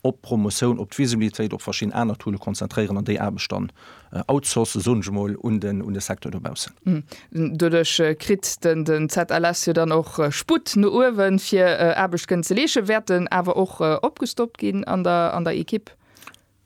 op d'Promotioun, op d'Visibilitéit, op verschidden aner Toole konzentréieren an déi Aarbecht dann outsourcen, soen ech emol, un de Secteur dobaussen. Doduerch kritt den ZLS jo dann och Sputt no uewen, fir Aarbecht kënnen ze leesche. Wäert en awer och opgestockt ginn an der Ekipp?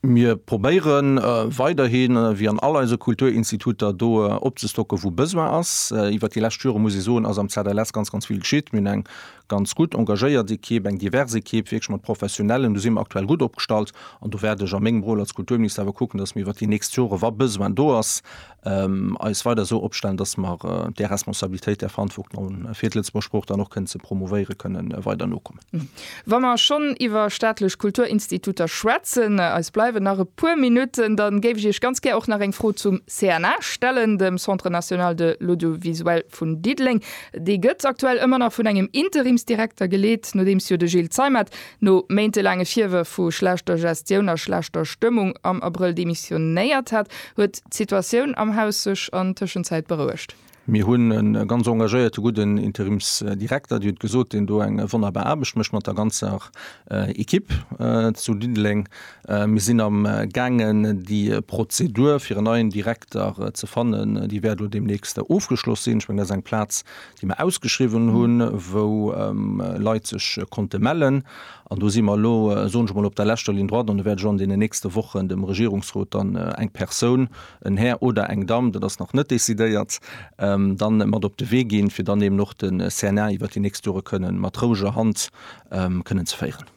Mir probéiere weiderhi wéi an all eise Kulturinstituter do opzestocken, wou Besoin ass. Iwwert déi lescht Jore, muss ee soen, ass am ZLS ganz, ganz vill geschitt. Mir hunn eng Ganz gutt, engagéiert Ekipp, eng divers Ekipp, wierklech mat Professionellen. Do si mer aktuell gutt opgestallt an do wäert ech a mengem Rôle als Kulturminister awer kucken, dass mir iwwert déi nächst Jore, wa Besoin do ass, eis weider esou opstellen, dass mer där Responsabilitéit, där Verantwortung, fir d'Lëtzebuerger Sprooch dann och kënnen ze promouvéieren, kënnen weider nokommen. Wa mer schonn iwwer staatlech Kulturinstituter schwätzen, eis bleiwen nach e puer Minutten, da géif ech Iech ganz gär och nach eng Fro zum CNA stellen, dem Centre national de l'audiovisuel vun Diddeleng. Déi gëtt aktuell ëmmer nach vun engem Interimsdirekter geleet, nodeems jo de Gilles Zeimet no méintelaange Virwërf vu schlechter Gestioun a schlechter Stëmmung am Abrëll demissionéiert hat. Huet d'Situatioun am Haus sech an Tëschenzäit berouegt? Mir hunn e ganz engagéierte gudden Interimsdirekter, Dir hutt gesot, deen do eng wonnerbar Aarbecht mécht mat der ganzer Ekipp zu Diddeleng. Mir sinn am gaangen déi Prozedur fir en neien Direkter ze fannen. Déi wäert elo deemnächst ofgeschloss sinn. Ech mengen, dat ass eng Plaz, déi mer ausgeschriwwen hunn, wou Leit sech konnte mellen. An do si mer elo, soen ech emol, op der leschter Ligne droite. An do wäert ech och an deenen nächste Wochen dem Regierungsrot dann eng Persoun, en Här oder eng Damm, dat ass nach net decidéiert, dann mat op de Wee ginn, fir dann eben och de CNA iwwert déi nächst Jore kënnen mat roueger Hand kënnen ze féieren.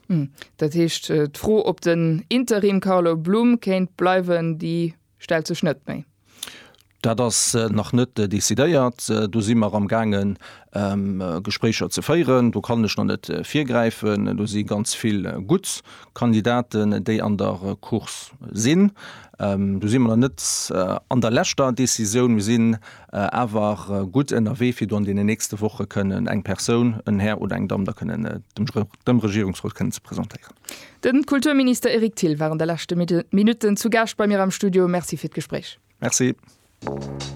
Dat heescht, d'Fro ob den Interim Carlo Blum kéint bleiwen, déi stellt sech net méi? Dat ass nach net decidéiert. Do si mer am gaangen Gespréicher ze féieren. Do kann ech nach net virgräifen. Do si ganz vill gutt Kandidaten, déi an der Course sinn. Do si mer nach net an der leschter Decisioun. Mir sinn awer gutt ënnerwee fir do an deenen nächste Woche kënnen eng Persoun, en Här oder eng Damm, da kënnen dem dem Regierungsrot kënnen ze presentéieren. Den Kulturminister Eric Thill war an de leschte Minutten zu Gaascht bei mir am Studio. Merci fir d'Gespréich. Merci.